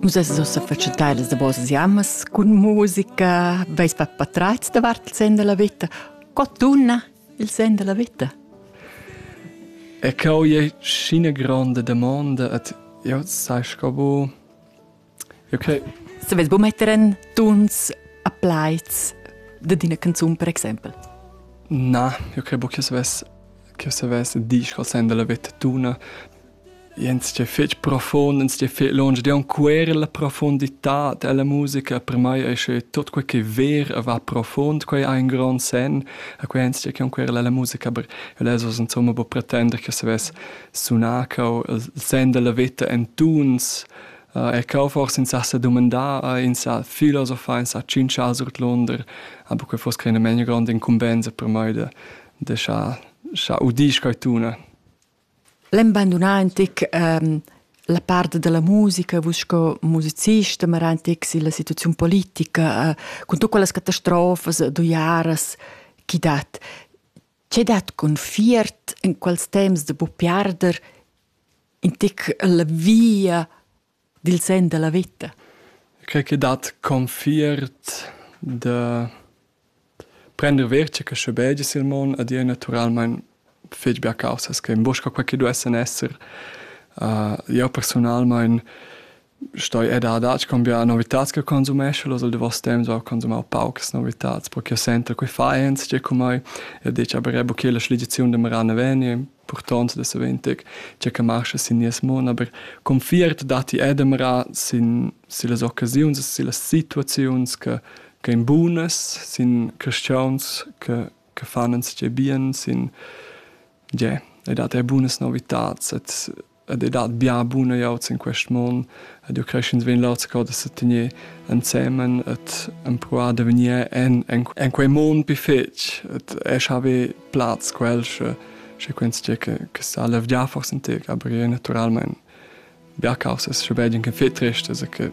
Nus es ussa fatschentadas da vosas jamas cun musica, veis per patratgs davart il sen della vita. Co tunna il sen della vita? E cau è scina grande domanda et io sai scabo io che Se vez bu metter en tuns a plaids de dina canzun per exempel. Na, io credo che se ves che se ves disch col sen della vita tuna Ins che fetg profund, ins che fetg lunsch ed aunc quera la profunditad ella musica per mei ei sche tut quei che ver e va profund, quei ha in grond senn e quei ins che aunc quera ella musica, aber elles oz insomma buca pretender che savess sunar cau il senn dalla veta en tuns. E cau forse ins ha sa dumandar, ins ha filosofar, ins ha tschintschar surdlunder, aber quei fuss creina meglio gronda incumbensa per mei de de schar schar udir quei tuna. L'embandunà antic la part da la musica, vus sco musicista, ma era antic silla situaziun politica, cun tut quellas catastrofas d'uiaras chi dat. Che dat cun fiert in quels temps da buc piarder in tic la via dil senn dalla veta. Quei che dat confiert da prender verce che schebegi sil mon ed ir naturalmein fetg bia caussas che in bosca quei che duessen esser. Uh, io personalmein stoi ed adatg con bia novitats che consumesce los al davos temps ho consumau paucas novitats perché io sento quei faens che cu mai e dice aber bu che la schligiziun de marana veni purtond da saventeg che che marscha sin nies mon, aber confiert datti edemra sin, sin las occasiuns, sin las situaziuns che, che ein bunas, sin cristians che, che fanens che bien, sin yeah, e dat er bunas novitats et ed ei dat bia buna glieud sin quest mon ed jeu cresch'ins vegn leu co da setener ensemen et empruar da vegnir en, en, en quei mon pi fetg et e haver plaz quel sche sche quens tgei che, che sa levgiar forse in tec aber è naturalmein bia causas sche bein che fetrecht also che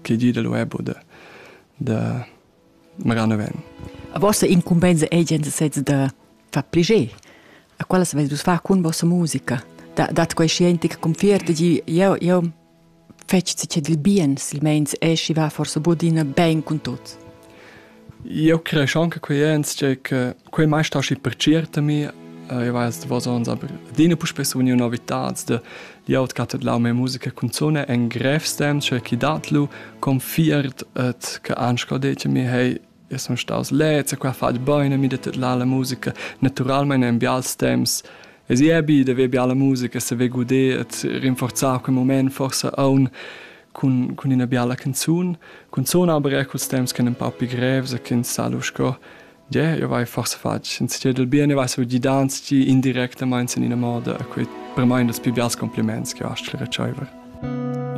che di da lo ebo de de magari non ven. A vostra incumbenza è gente sezza da far pliger. A quella se vus far con vostra musica. Da dat quei scienti che confiert di io io fetch si che dil bien, silmeins e schi va forse bodina ben con tot. Io creo anche quei ens che che Quei mai sta schi per certami, io weiß davos ons, aber adina puspei sun io novitats de di aut cat lau mia musica canzone en grev stem, cioè chi dat lu confiert et che anschlo dece mi hey io son staus lezza qua fat bene mi det la la musica naturalmente in bials temps es i ebi de ve biala musica se ve gude et rinforzar quel moment forse aun cun cun ina biala canzun cun sona aber er culs temps che un pau più grevs e che in salu sco Ie, jeu vai forse fatg in stir dil bien e vai saviu gidar ans gi indirectamain sin ina moda a quei per mei ein das pli bials compliments che ho astg retscheiver.